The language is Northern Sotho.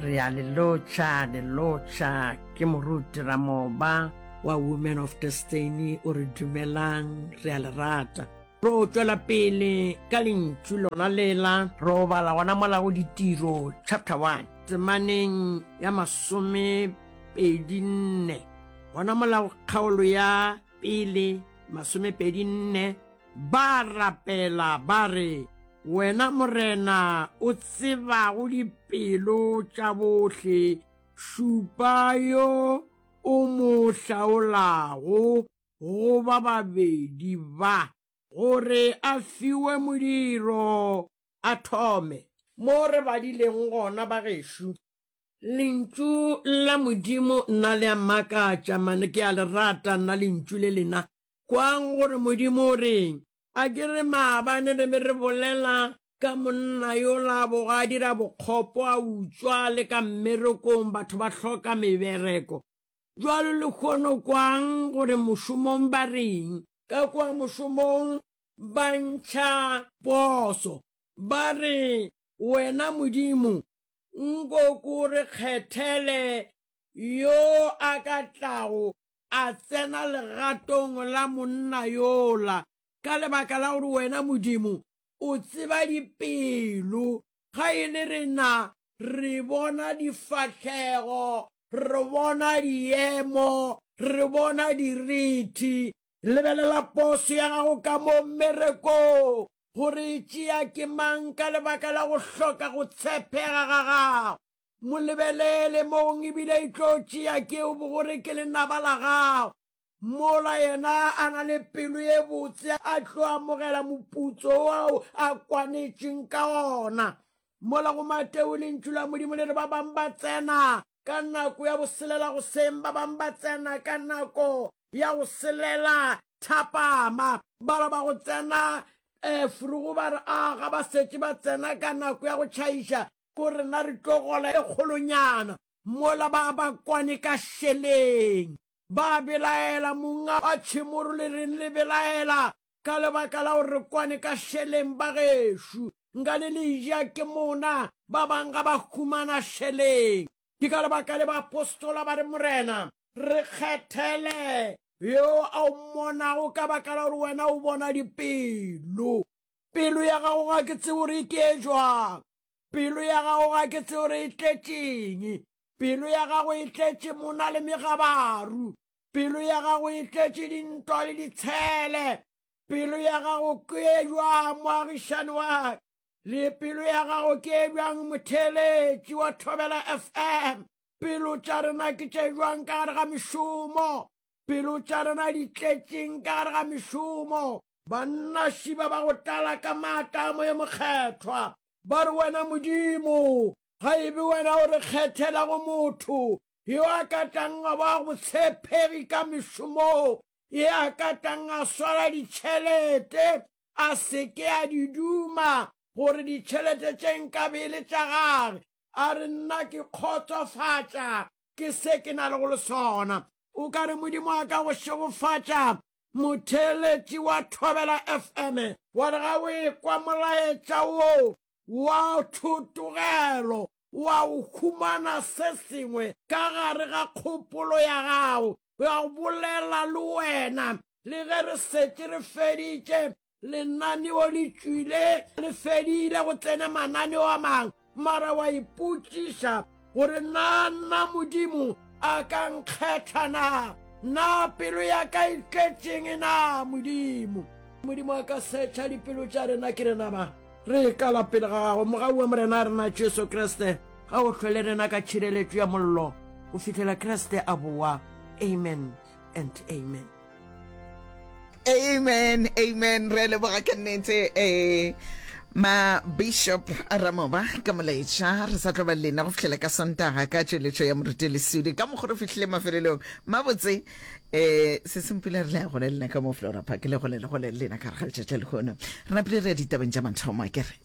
re a le lotšha le lotšha ke moruti ramoba wa women of destiny o re dumelang re a le rata ro tšwela pele ka lentšu lona lela ro bala gona mola go ditiro chapter 1 temaneng ya masome pedi nne gona mola kgaolo ya pele masome pedi nne Ba rapela ba re, Wena Morena o tsebago dipelo tša bohle, šupa yo o mo hlaolago go ba babedi ba, gore a fiwe modiro a thome. Mo re badileng gona, bagešo. Lentšu la Modimo nna le a mmakatša, mane ke a le rata nna lentšu le lena, Kwang gore Modimo o reng. A ke re maabane re be re bolela ka monna yola a boga a dira bokgopo, a utswa, a le ka mmerekong, batho ba hloka mebereko. Bjalo lehono kwang gore mošomong ba reng. Ka kua mošomong ba ntšha poso, ba re, Wena Modimo, nko ko re kgethele yo a ka tlago a tsena legatong la monna yola, ka lebaka la gore wena Modimo o tseba dipelo, ga e le rena re bona difahlego, re bona diemo, re bona dirithi. Lebelela poso ya gago ka mo mmerekong, gore e tšea ke mang ka lebaka la go hloka go tshepega ga gago. Mo lebelele mong e bile e tlo tšea ke o bogore ke lenaba la gago. Mola yena a na le pelo ye botse a tlo amogela moputso ao a kwanetšeng ka ona. Mola go Mateo Lentšu la Modimo le re ba bang ba tsena ka nako ya go selela goseng, ba bang ba tsena ka nako ya go selela thapama. Bala ba go tsena forogo ba re, A ga ba setše ba tsena ka nako ya go tšhaiša? Ko rena re tlo gola e kgolonyana mola ba ba kwane ka šeleng. Ba belaela, Monga wa tšhemo role reng le belaela ka lebaka la gore re kwane ka šeleng bagešo. Nka le le ja ke mona, ba bang ga ba humana šeleng. Ke ka lebaka le baapostola ba re, Morena, re kgethele yo a o mmonago ka baka la gore wena o bona dipelo. Pelo ya gago ga ke tsebo re itee jwang. Pelo ya gago ga ke tsebo re e tletšeng. Pelo ya gago e tletše mona le megabaru. Pelo ya gago e tletše dintwa le ditshele. Pelo ya gago ke e jwang moagišani wa le pelo ya gago ke e jwang motheeletši wa Thobela FM. Pelo tša rena ke tše jwang ka gare ga mešomo. Pelo tša rena di tletšeng ka gare ga mešomo. Bannaši ba ba go tlala ka maatla a Moya Mokgethwa, ba re, Wena Modimo, ga e be Wena o re kgethelago motho yo a ka tlang a ba botshepegi ka mešomong, ye a ka tlang a swara ditšhelete, a se ke a di duma, gore ditšhelete tše nkabe e le tša gage. A re, Nna ke kgotsofatša ke se ke na le go le sona. O ka re Modimo a ka go šegofatša. Motheeletši wa Thobela FM wa re ga o ekwa molaetša wo wa thotogelo, wa o humana se sengwe ka gare ga kgopolo ya gago, wa bolela le wena. Le ge re setše re feditše, Lenaneo le tšwile le fedile go tsena mananeo a mang, mara wa ipotšiša gore na nna Modimo a ka nkgetha na? Na pelo ya ka e tletšeng na Modimo? Modimo a ka setšha dipelo tša rena ke rena ba re ikala pele ga gago mogau wa Morena a rena Jesu Kriste ga o hlwele rena ka tšhireletšo ya mollo go fihlela Kriste a boa. Amen. and amen amen amen re leboga ke nnete eh ma bishop ramoba ka molaetša re sa tlo ba lena go fitlhela ka sontaga ka tšweletšo ya moruti lesudi ka mokgoro fitlhile mafelelong mabotse eh se sempula re le ya gole lena ka mo flora park le gole le gole lena ka re ga letšatša lehono re napile re ya ditabeng tša mathomo a kere